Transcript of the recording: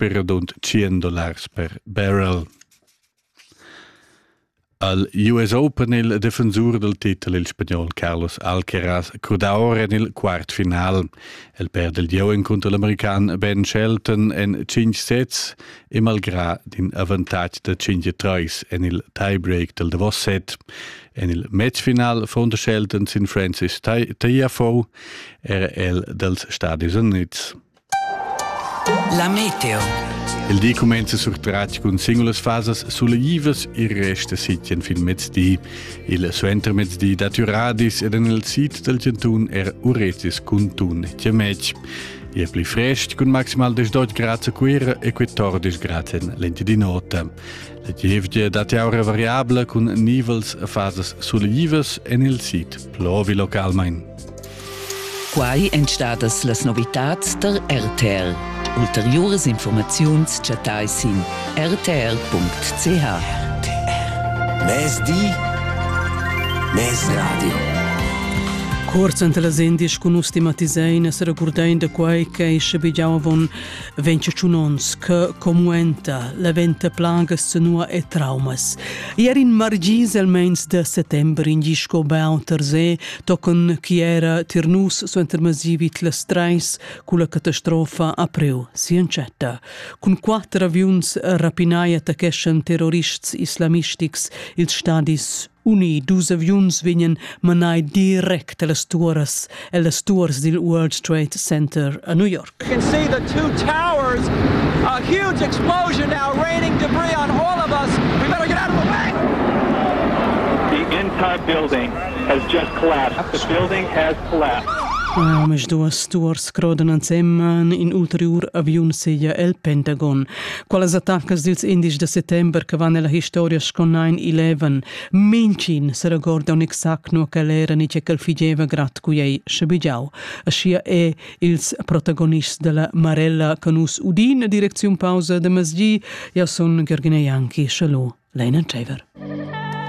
per radund 100 dollars per barrel. Al US Open il defensur del titel il spagnol Carlos Alcaraz cruda ora en il quartfinal. El perde il gieu incontro l'american Ben Shelton en 5 sets e malgrà din avantatg da 5-3 en il tiebreak del Davos set. En il matchfinal von der Shelton sin Francis Tagliafo era el dels Stati Units. La meteo. Il di cumenza surtratg cun singulas fasas suleivas e resta sitien fin mezdi. Il suentermezdi dat Uradis ed en il sid del Gentun er Uretis cun tun Chiamec. E pli frest cun maximal 18 grad a Cuira e 14 grad en lenti di nota. La gievgia dat aura variabla cun nivels a fasas suleivas en il sid plovi localmain. Quai èn stadas las novitads tar RTL. Ulteriuras informaziuns chattai sin rtr.ch. Mezdi, mezradio. Kurz ante las endisch cun nus stigmatisein e seregurdein da quai che schabigiau avon 21 onns che comuenta la venta plagas senua e traumas. Ier in margis el meins de settember in gisco beau terze tochen chi era tir nus suentermasi vid las treis culla catastrofa april sincetta. Cun quatter aviuns rapinai attaccheschan terrorists islamistics ils stadis Uni dus aviuns vegnan manai direct a las turas e las tours dil World Trade Center a New York. You can see the two towers. A huge explosion now raining debris on all of us. We better get out of the way! The entire building has just collapsed. The building has collapsed. Omisduas stuors crodanan semman in ulteriur aviun seglia el Pentagon. Qualas attaccas dils indies da settember che van ella historia sco 9-11, mincin se regorda un exact no che l'era ni che cal figeva grat cu ei schabigiau. Aschia è Ils protagonists della Marella che nus udin direcziun pausa de masgi, ja sun Gergine Janki, Chalot, Leina Tschever.